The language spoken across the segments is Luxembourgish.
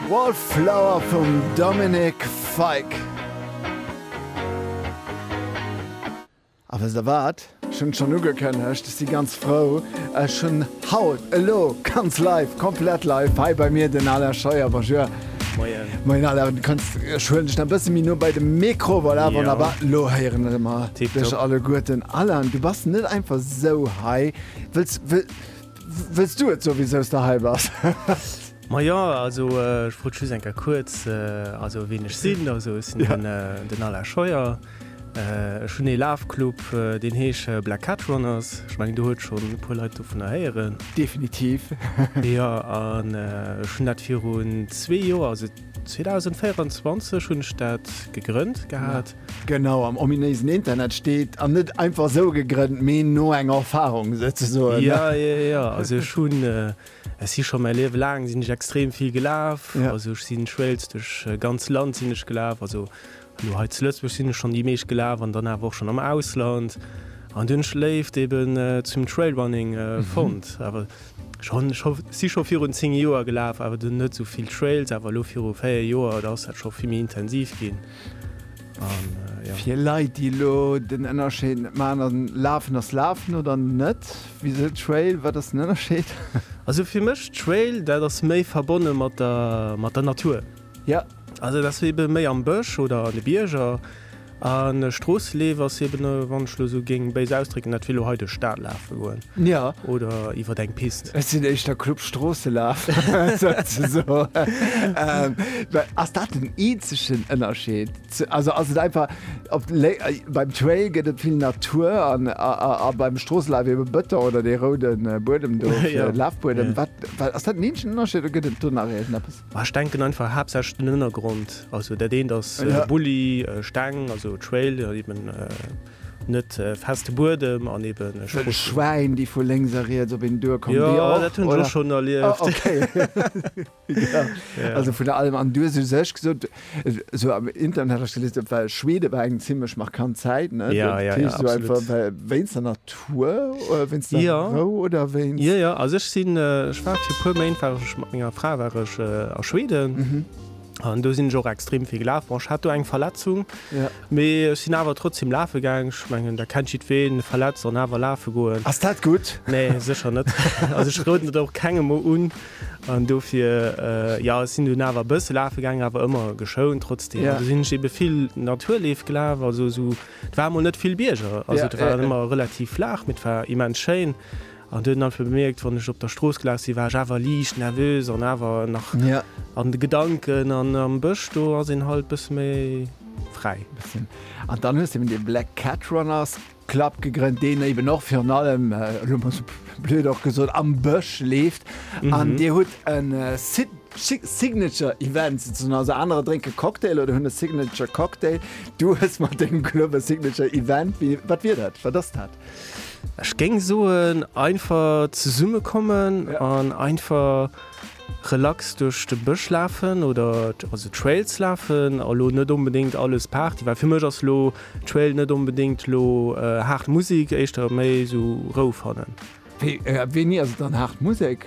Wallflower vum Dominic Fike. A wësst der wat? Ech hunn et schonn ugekënnegt, ech si ganz frou, ech hunn haut, elo, ganz live, komplett live hei bei mir den Alain Scheuer. Bonjour. Moien. Moien Alain, kanns, ech huelen dech nach e bësse méi no bei de Mikro, voilà, wonnerbar, elo héieren mer dech alleguerten. Alain, du bass net einfach esou hei. Wëlls, wëlls du et soe wisou s de hei bass? Majo, also ech wollt just eng Kéier kuerz, also ween ech sinn, also ech sinn den, den Alain Scheuer. Ech hunn ee Lafclub, deen heescht Black Cat Runners. Ech mengen, do huet schonn e puer Leit dovunner héieren. Definitiv. Jo, an ech hunn dat virun zwee Joer, also 2024 hunn ech dat gegrënnt gehat. Genau, am ominéisen Internet steet, an net einfach esou gegrënnt, mee no enger Erfarung souzesoen. Jo, jo, jo, also ech hunn. Ech si scho mäi Liewe laang sinn ech extrem vill gelaf. Also ech sinn schwéiels duerch ganz Land sinn ech gelaf. Also elo hei zu Lëtzebuerg sinn ech schonn déi meescht gelaf an dann awer och schonn am Ausland. An dunn ech d'Léift eben zum Trailrunning fonnt. Awer ech hunn ech si scho virun 10 Joer gelaf, awer dunn net esou vill Trails. Awer elo viru 4 Joer, da ass dat scho vill méi intensiv ginn. Fir Leit déi elo den Ënnerscheed net man an lafen ass lafen oder net wie se Trail wat ass den Ënnerscheed? Also fir mech Trail dat ass méi verbonne mat der mat der Natur. Ja. Also dat ass ebe méi am Bësch oder an de Bierger an e Stroosseleef ass eben wann ech lo sou géing béis ausdrécken dat wéi elo hei duerch Stad lafe goen. Ja. Oder iwwert eng Pist. Respekt. Ech sinn éischter Club Stroosselaf, souzesoen. Ass dat den eenzegen Ënnerscheed? Also ass et einfach, op beim Trail gëtt et vill Natur an a beim Stroosselaf ebe Bëton oder dee roude Buedem do, Lafbuedem. Wat, ass dat den eenzegen Ënnerscheed oder gëtt et do nach iergendepes? Ech denken einfach haaptsächlech den Ënnergrond. Also dat eent ass Bulli, Steng, also Trail, eben. Net feste Buedem an eben e Strosschutt. Schwäin déi vu lénks a riets op een duer kommen. Jo, dat hunn ech och schonn erlieft. Also vun allem an du hues u sech gesot, esou am Internet hat ech gelies, dat war Schweden war eng zimlech markant Zäit, ne? Jo, jo, jo, absolut. Wéinst der Natur, wéinst der Rou oder wéinst? Jo, jo, also ech sinn, ech war fir e puer Méint war ech mat menger Fra war ech a Schweden. An do sinn ech och extrem vill gelaf. Bon, ech hat do eng Verletzung, ja. mee ech sinn awer trotzdem lafe gaang. Ech mengen, dat kennt jiddween, verletzt an awer lafe goen. Ass dat gutt? Nee, sécher net. Also ech roden et och kengem méi un. An dofir, äh, ja, ech sinn dunn awer e bësse lafe gaangen, awer ëmmer geschount trotzdem. Ja. An do sinn ech ebe vill Naturleef gelaf, also esou, et war emol net vill Bierger, also et war ëmmer relativ flaach, mee et war immens schéin. An huet einfach bemierkt, wann ech op der Strooss gelaf sinn, war ech awer liicht nervös an awer nach an de Gedanken. An am Bësch, do ass een halt bësse méi fräi. An dann hues de eben de Black Cat Runners Club gegrënnt, deen eben och virun allem, elo mol sou blöd och gesot, am Bësch leeft. An Dir hutt e Signature Event souzesoen, also anerer drénke Cocktail oder hunn e Signature Cocktail. Du hues mat dengem Club e Signature Event. Wat wier dat? Wat ass dat? Ech géing soen einfach zesumme kommen an einfach relax duerch de Bësch lafen oder also Trails lafen a lo net onbedéngt alles Party, well fir mech ass lo Trail net onbedéngt lo haart Musek, éischter méi esou Rou fannen. Wéini ass et dann haart Musek?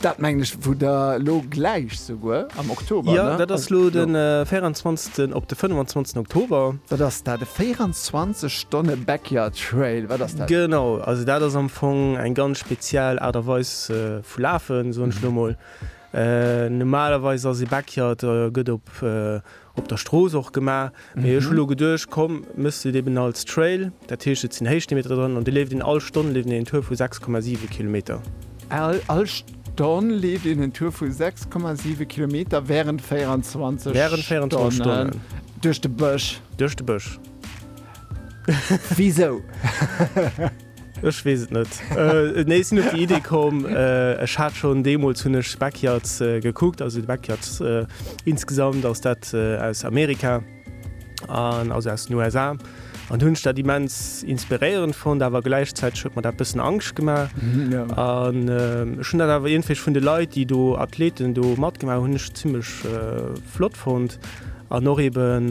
Dat mengen ech, wou Der elo gläich souguer am Oktober, ne? Jo, dat ass elo de 24. op de 25. Oktober. Wat ass dat, e 24 Stonne Backyard Trail? Wat ass dat? Genau, also dat ass am Fong eng ganz speziell Aart a Weis vu Lafen, soen ech elo emol. Normalerweis ass ee Backyard, gëtt op Op der Strooss och gemaach, mee ech hu lo geduecht, komm, méchs de et eben als Trail, dat heescht et sinn Héichsteemeter dran an de leeft een all Stonn leeft een een Tour vu 6,7 Kilometer. All Stonn leeft een en Tour vu 6,7 Kilometer wärend 24 Stonnen duerch de Bësch? Duerch de Bësch. Wisou? Ech wees et net. Nee sinn op déi Idee komm, ech hat schonn deemools hunn ech Backyards gekuckt, also de Backyards insgesamt ass dat aus Amerika an also aus den USA an hunn ech dat immens inspiréierend fonnt, awer gläichzäiteg huet mer dat bëssen Angscht gemaach an ech hunn dat awer iergendwéi vun de Leit, déi do Athleten do matgemaach hunn, hunn ech zimmlech flott fonnt an och eben.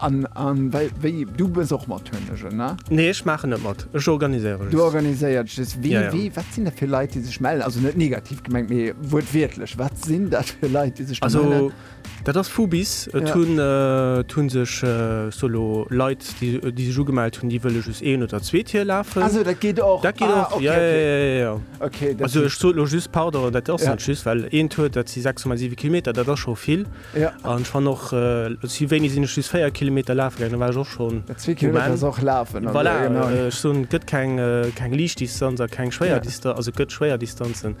An wéi, du bës och mat Hönegen, ne? Nee, ech maachen net mat, ech organiséiere just. Du organiséiert just. Wee, wee, wat sinn dat fir Leit, déi sech mellen? Also net negativ gemengt, mee wuertwiertlech, wat sinn dat fir Leit, déi sech do mellen? Also dat ass vu bis. Et hunn, et hu sech sou elo Leit, déi sech ugemellt hunn, déi wëlle just een oder zwee Tier lafen. Ah sou, dat geet och? Dat geet och, jo, jo, jo, jo. Okay, dat. Also ech sot elo just, pardon, dat ass net just, well een Tour, dat si 6,7 Kilometer, dat ass scho vill. Ja. An ech fan och, si wéini sinn ech just 4 Kilometer lafe gaangen, do war ech och schon. Ja, zwee Kilometer ass och lafen. Voilà, ech soen, et gëtt keng, keng Liichtdistanz a keng schwéier Dista. Ja. Also et gëtt schwéier Distanzen,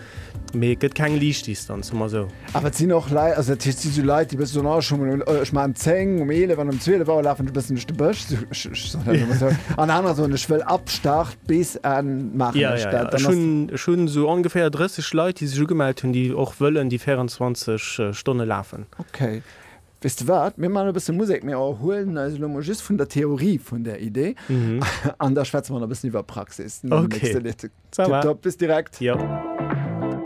mee et gëtt keng Liichtdistanz, soe mer esou. Awer et sinn och Lei, also dat heescht, et si sou Leit, déi bëssen soen, oh ech hu mol un, ech maachen 10, um 11 an um 12 Auer lafen ech e bëssen duerch de Bësch, ech, ech, ech soen dat elo mol esou. An anerer soen, ech wëll ab Start Bis Enn maachen ech dat. Dann ass. Ech hunn esou ongeféier 30 Leit, déi sech ugemellt hunn, déi och wëllen déi 24 Stonne lafen. Ok. Weess de wat, mir maachen e bësse Musek. Mir erhuelen eis elo mol just vun der Theorie vun där Idee an da schwätze mer nach e bëssen iwwer Praxis. Ok. Ça va. Tipptopp. Bis direkt. Jo.